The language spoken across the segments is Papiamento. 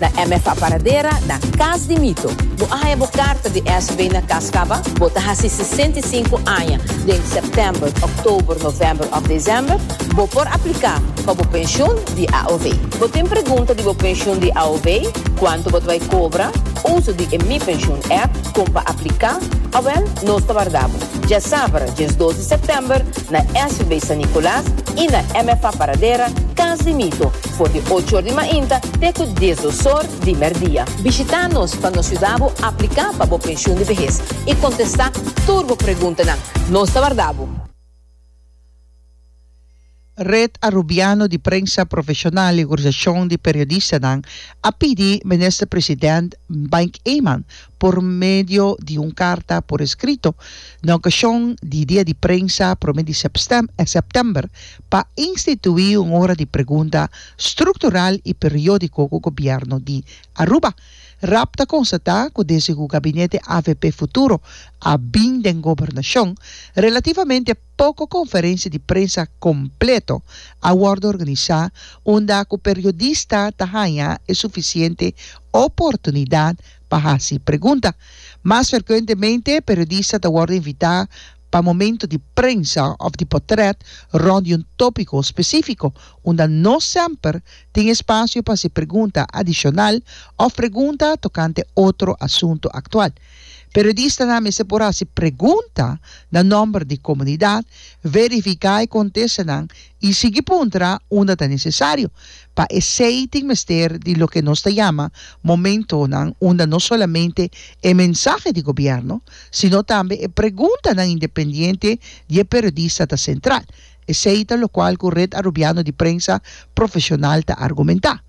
Na MFA Paradera, na Cas di Mito, bo a haña bo karta di SB na kas kaba bo ta hasi sesenta i sinku aña den sèptèmber, òktober, novèmber òf desèmber. Bo por apliká pa bo penshun di AOW. Bo tin pregunta di bo penshun di AOW, kuantu bo ta bai kobra, uso di e Mi Pensioen app, kon pa apliká? Awèl, nos ta warda bo dje sabra, djes dos di sèptèmber, na SB San Nikolaas i na MFA Paradera, Cas di Mito. for di ocho or di mainta te ku dies dos or di mèrdia. Bishita nos pa nos yuda bo apliká pa bo penshun di behes i kontestá tur bo preguntanan. Nos ta warda bo! Red Arubiano di Prensa Profeshonal i Organisashon di Periodistanan a pidi Minister President Mike Eman por medio di un karta por eskrito na okashon di dia di prensa prome di sèptèmber pa instituí un ora di pregunta struktural i periódiko ku gobièrnu di Aruba. Raab ta konstatá ku desde ku gabinete avp Futuro a bin den gobernashon, relativamente poko konferensia di prensa kompleto a wòrdu organisá unda ku periodista ta haña e sufisiente oportunidat pa hasi pregunta. Mas ferkuentemente, periodista ta wòrdu invitá pa momento di prensa òf di potrèt rònt di un tópiko spesífiko, unda no semper tin espasio pa hasi pregunta adishonal òf pregunta tokante otro asuntu aktual. Periodistanan mester por hasi pregunta na nòmber di komunidat, verifiká e kontestanan i sigui puntra unda ta nesesario. Pa esei tin mester di loke nos ta yama momentonan unda no solamente e mensahe di gobièrnu, sino tambe e preguntanan independiente di e periodista ta sentral. Esei ta lokual ku Red Arubiano di Prensa Profeshonal ta argumentá.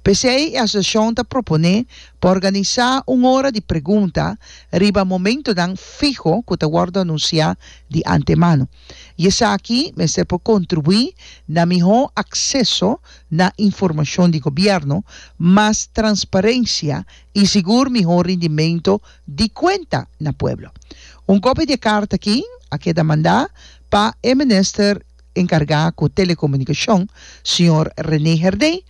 P'esei e asosiashon ta proponé pa organisá un ora di pregunta riba momentonan fiho ku ta wòrdu anunsiá di antemano. i esaki mester por kontribuí na mihó akseso na informashon di gobièrnu, mas transparensia i sigur mihó rindimentu di kuenta na pueblo. Un kopia di e karta aki a keda mandá pa e minister enkargá ku Telekomunikashon, señor René Herdé,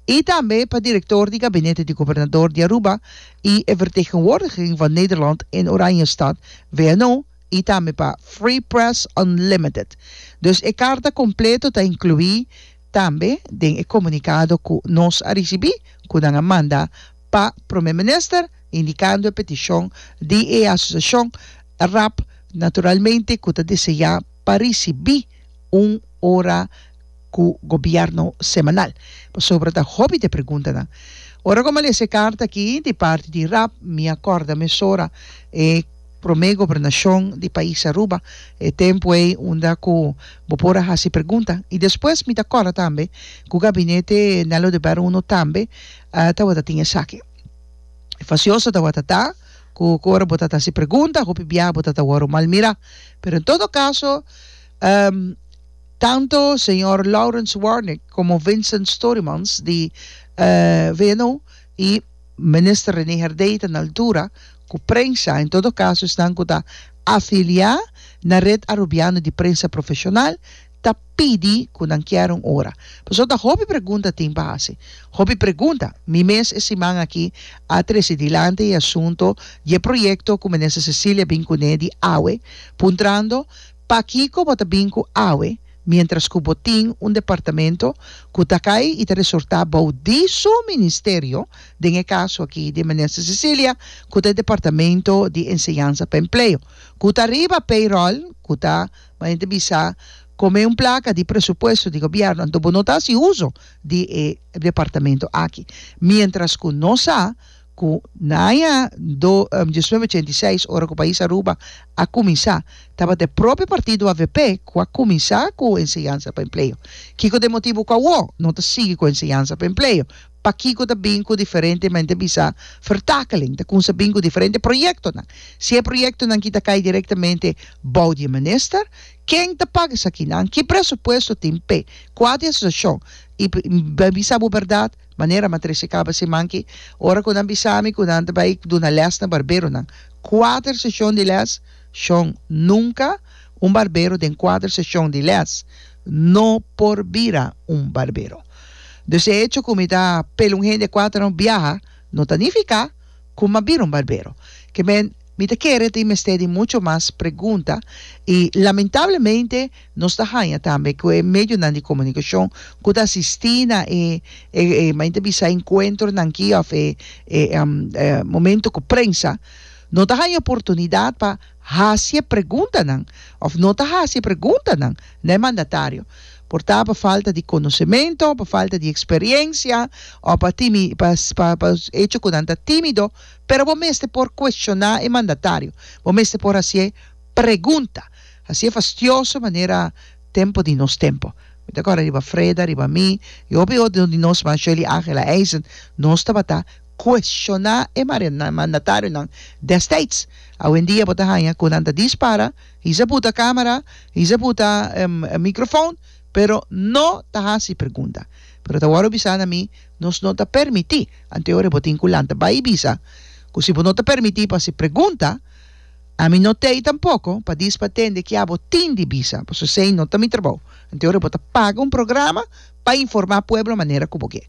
i tambe pa direktor di gabinete di gobernador di Aruba i e vertegenwoordiging van Nederland in Oranjestad, VNO, i tambe pa Free Press Unlimited. Dus e karta kompleto ta inkluí tambe den e komunikado ku nos a risibí ku nan a manda pa Prome Minister indikando e petishon di e asosiashon rap naturalmente ku ta deseá pa risibí un ora ku gobièrnu semanal. Pasobra ta hopi di e preguntanan. Ora ku mi a lesa e karta aki di parti di rap mi a kòrda mesora e promé gobernashon di pais Aruba, e tempu ei unda ku bo por a hasi pregunta. I despues mi ta kòrda tambe ku gabinete Nèlo de Bèr Uno tambe tabata tin esaki. Fasioso tabata ta ku ora bo ta hasi pregunta hopi biaha bo ta tawòrdu malmirá. Pero en todo kaso. Tanto señor Lawrence Warnick como Vincent Storymans di VNO y Minister Rene Herdey ta na altura cu prensa en todo caso esnan cu ta afilia na Red Arubiano di Prensa Profesional ta pidi cu nan kier un ora. Pasobra ta hopi pregunta tin pa haci. Hopi pregunta. Mi mes e siman aki a trece dilanti e asunto di e proyecto cu Minister Cecilia bin cune di awe puntrando Pakico bo ta bin cu awe mientras cu bo tin un departamento cu ta cay y ta resorta bao di su ministerio, den e caso aki di Minister Cecilia cu ta e Departamento di Enseñanza pa Empleo, cu ta riba payroll, cu ta, manera ta bisa, come un placa di presupuesto di gobierno, anto bo no ta haci uzo di e departamento aki, mientras cu no sa. Ku Naya do diecinueve ochenta i seis, ora ku pais Aruba a kuminsá, tabata e propio partido avp ku a kuminsá ku enseñansa pa empleo. Kiko ta e motibu ku awó no ta sigui ku enseñansa pa empleo? Pakiko ta bin ku diferente men ta bisa vertakeling? Ta kunda bin ku diferente proyektonan? Si e proyektonan ki ta kai direktamente bou di e minister, ken ta paga esakinan? Ki presupuesto tin p'e kuater asosiashon? I pa bisa bo bèrdat. Manera ma trese kaba siman ki, ora ku nan bisa mi ku nan ta bai duna lès na barberonan, kuater seshon di lès, shon, nunka un barbero den kuater seshon di lès no por bira un barbero. Dus e echo ku mi ta pela un hende kuater no biaha no ta nifiká ku m'a bira un barbero. Ke men, mi ta kere tin mester di mucho mas pregunta i lamentablemente Nos ta haña tambe ku e medionan di komunikashon ku ta asistí na e e men ta bisa enkuentronan ki òf e e momento ku prensa no ta haña oportunidat pa hasi e preguntanan òf no ta hasi e preguntanan na e mandatario por ta pa falta di konosementu, pa falta di eksperiensia òf pa timi pa pa echo ku nan ta tímido pero bo mester por kueshoná e mandatario bo mester por hasié. Pregunta, Hasié fastioso manera tempo di nos tempo. Mi ta kòrda riba Freda, riba mi, i hopi otro di nos man, Shirley Ángela Eisen, nos tabata kuestioná e mandatarionan dèstèds. Awendia bo ta haña ku nan ta dispara, hizá buta kámara, hizá buta mikrofòn, pero no ta hasi pregunta. Pero ta wòrdu bisá na mi, nos no ta permití, anteora bo tin ku lanta bai bisa ku si bo no ta permití pa hasi pregunta, Ami no t'ei tampoco pa dis pa tende ki abo tin di bisa, pasobra esei no ta mi trabou. Anto ora bo ta paga un programa pa informa pueblo manera cu bo ke.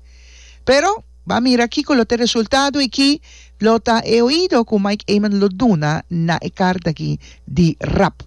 Pero b'a mira kico lo t'e resultado y ki lo ta e oido cu Mike Eman lo duna na e carta aki di rap.